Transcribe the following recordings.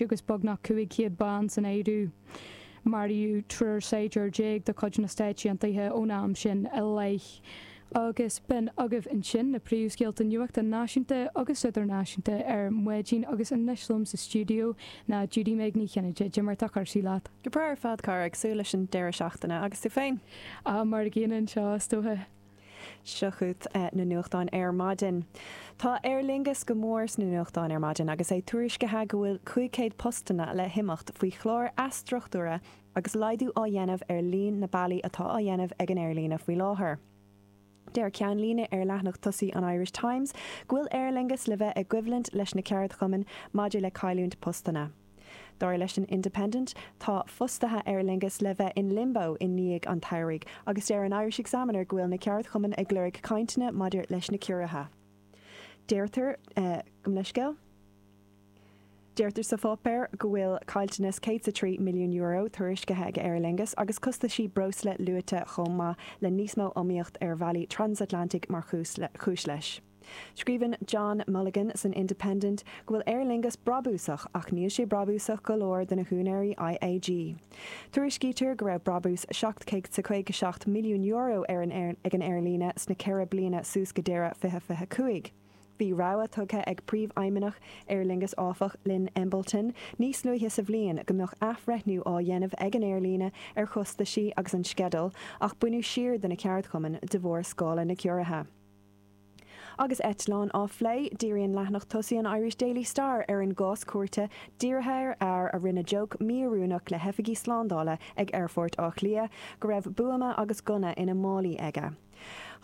agus beagnach 500 bean san áireamh. Maraíodh triúr saighdiúir déag de chuid na Stáit Aontaithe ón am sin i leith. Agus b'in agaibh ansin na príomhscéalta nuachta náisiúnta agus idirnáisiúnta ar maidin agus anois liom sa stiúideo ná Judy-Meg Ní Chinnéide. Cad é mar atá cúrsaí leat? Go breá ar fad, cara. Ag súil leis an deireadh seachtaine. Agus tú féin? Á, mar a gcéanna anseo, is dócha. Seo chugat na nuachtáin ar maidin. Tá Aer Lingus go mór sna nuachtáin ar maidin agus é tuairiscithe go bhfuil 500 postanna le himeacht faoi chlár athstruchtúraithe agus laghdú á dhéanamh ar líon na bealaí atá á dhéanamh ag an aerlíne faoi láthair. Deir ceannlíne ar leathanach tosaigh an Irish Times go bhfuil Aer Lingus le bheith i gcoimhlint leis na ceardchumainn maidir le cailliúint postanna. Dar leis an Independent, tá fostaithe Aer Lingus le bheith in Limbo i ndiaidh an tsamhraidh agus deir an Irish Examiner go bhfuil na ceardchumainn ag lorg cainteanna maidir leis na ciorruithe. Deirtear, gabh mo leithscéal, deirtear sa pháipéar go bhfuil caillteanas €103 milliún tuairiscithe ag Aer Lingus agus costaisí breosla luaite chomh maith le níos mó iomaíocht ar bhealaí transatlantaigh mar chúis leis. Scríobhann John Mulligan san Independent go bhfuil Aer Lingus brabúsach ach níl sé brabúsach go leor do na húinéirí IAG. Tuairiscítear go raibh brabús seacht céad caoga seacht milliún euro ar an aer ag an aerlíne sna ceithre bliana suas go deireadh fiche fiche cúig. Bhí rabhadh tugtha ag príomhfheidhmeannach Aer Lingus áfach, Lynne Embleton, níos luaithe sa bhliain go mbeadh athbhreithniú á dhéanamh ag an aerlíne ar chostaisí agus an sceideal ach baineadh siar de na ceardchumainn de bharr scála na gciorruithe. Agus eitleáin á phlé, díríonn leathanach tosaigh an Irish Daily Star ar an gcás cúirte, dírithe ar fhear a rinne jóc mí-oiriúnach le hoifigigh slándála ag aerfort Átha Cliath go raibh buama agus gunna ina málaí aige.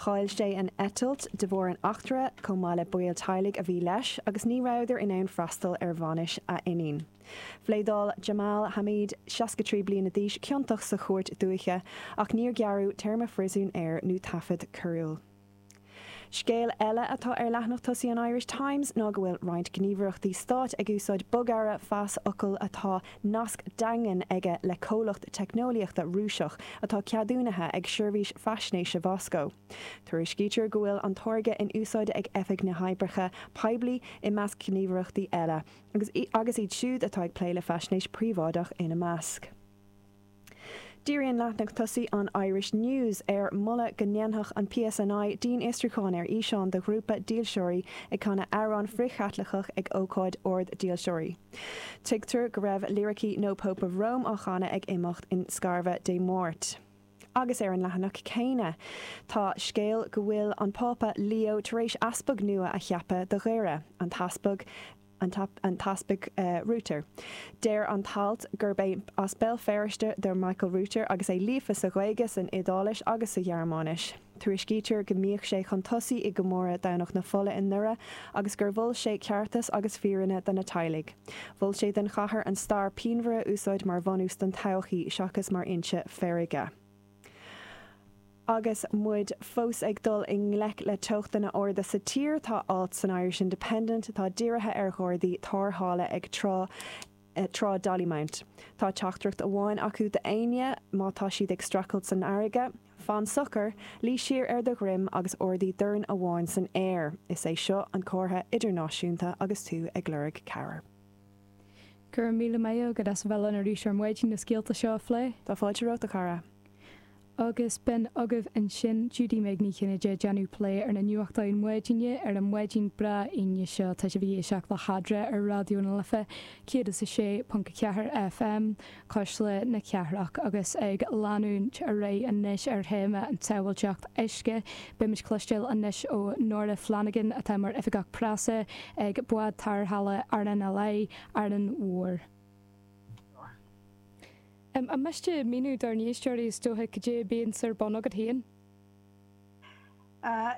Chaill sé an eitilt de bharr an eachtra, chomh maith le baill teaghlaigh a bhí leis, agus ní rabhadar in ann freastal ar bhainis a iníon. Phléadáil Jamal Hameed, 63 bliana d'aois, ciontach sa Chúirt Dúiche, ach níor gearradh téarma phríosúin air nó taifead coiriúil. Scéal eile atá ar leathanach tosaigh an Irish Times ná go bhfuil roinnt gníomhaireachtaí stáit ag úsáid bogearra phasfhocail atá nasc daingean aige le comhlacht teicneolaíochta Rúiseach atá ceadúnaithe ag seirbhís faisnéise Mhoscó. Tuairiscítear go bhfuil an táirge in úsáid ag Oifig na nOibreacha Poiblí i measc gníomhaireachtaí eile, agus iad siúd atá ag plé le faisnéis phríobháideach ina measc. Díríonn leathanach tosaigh an Irish News ar mholadh go ndéanfadh an PSNI dianfhiosrúchán ar fhíseán de ghrúpa dílseoirí ag canadh amhrán frith-Chaitliceach ag ócáid ord dílseoirí. Tuigtear go raibh liricí No Pope of Rome á chanadh ag imeacht in Scarva Dé Máirt. Agus ar an leathanach céanna tá scéal go bhfuil an Pápa Leo tar éis easpag nua a cheapadh do Dhoire, an tEaspag. an tEaspag Router. Deir an t-alt gurb as Béal Feirste do Michael Router agus é líofa sa Ghaeilge, san Iodáilis agus sa Ghearmáinis. Tuairiscítear go mbíodh sé chun tosaigh i gcomóradh Dhomhnach na Fola i nDoire agus gur mhol sé ceartas agus fírinne do na teaghlaigh. Mhol sé don chathair an stair pianmhar a úsáid mar bhunús don todhchaí seachas mar fhoinse feirge. Agus muid fós ag dul i ngleic le teochtanna arda sa tír, tá alt san Irish Independent atá dírithe ar ghardaí tárrthála ag trá Trá Dollymount. Tá teachtaireacht amháin acu d'éinne má tá siad ag streachailt san fharraige, Fan socair, luí siar ar do dhroim agus ardaigh dorn amháin san aer. Is é seo an comhartha idirnáisiúnta agus tú ag lorg cabhair. Go raibh míle maith agat as a bheith linn arís ar maidin na scéalta seo a phlé. Tá fáilte romhat a chara. Agus b'in agaibh ansin, Judy Meg Ní Chinnéide ag déanamh plé ar na nuachtáin maidine ar an maidin breá Aoine seo, tá sibh ag éisteacht le hAdhradh ar Raidió na Life 106.4 FM, Cuisle na Cathrach. Agus ag leanúint ar aghaidh anois ar théama an tsábháilteacht uisce, beimid cloisteáil anois ó Nora Flanagan atá mar Oifigeach Preasa ag Bád Tarrthála RNLI, Árainn Mhór. An miste míniú dár n-éisteoirí is dócha cad é a bíonns ar bun agat féin?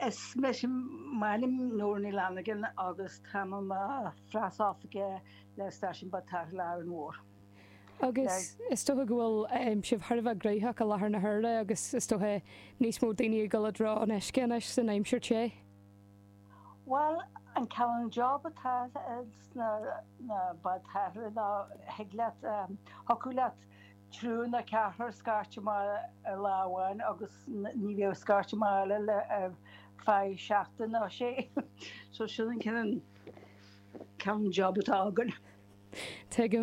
Is mise, m'ainm Nóra Ní Fhlanagan agus táim i mo phreasoifigeach le Stáisiún Bád Tarrthála Árainn Mhór. Agus is dócha go bhfuil sibh thar a bheith gnóthach i láthair na huaire agus is dócha níos mó daoine ag dul i dtreo an uisce anois san aimsir te? Bhuel, an cineál job atá sna na bád tarrthála ná thig leat thiocfadh leat triúr nó ceathrar scairt amach ar lá amháin agus ní bheadh scairt amach eile le ar feadh seachtain nó sé. So sin an cineál job atá againn.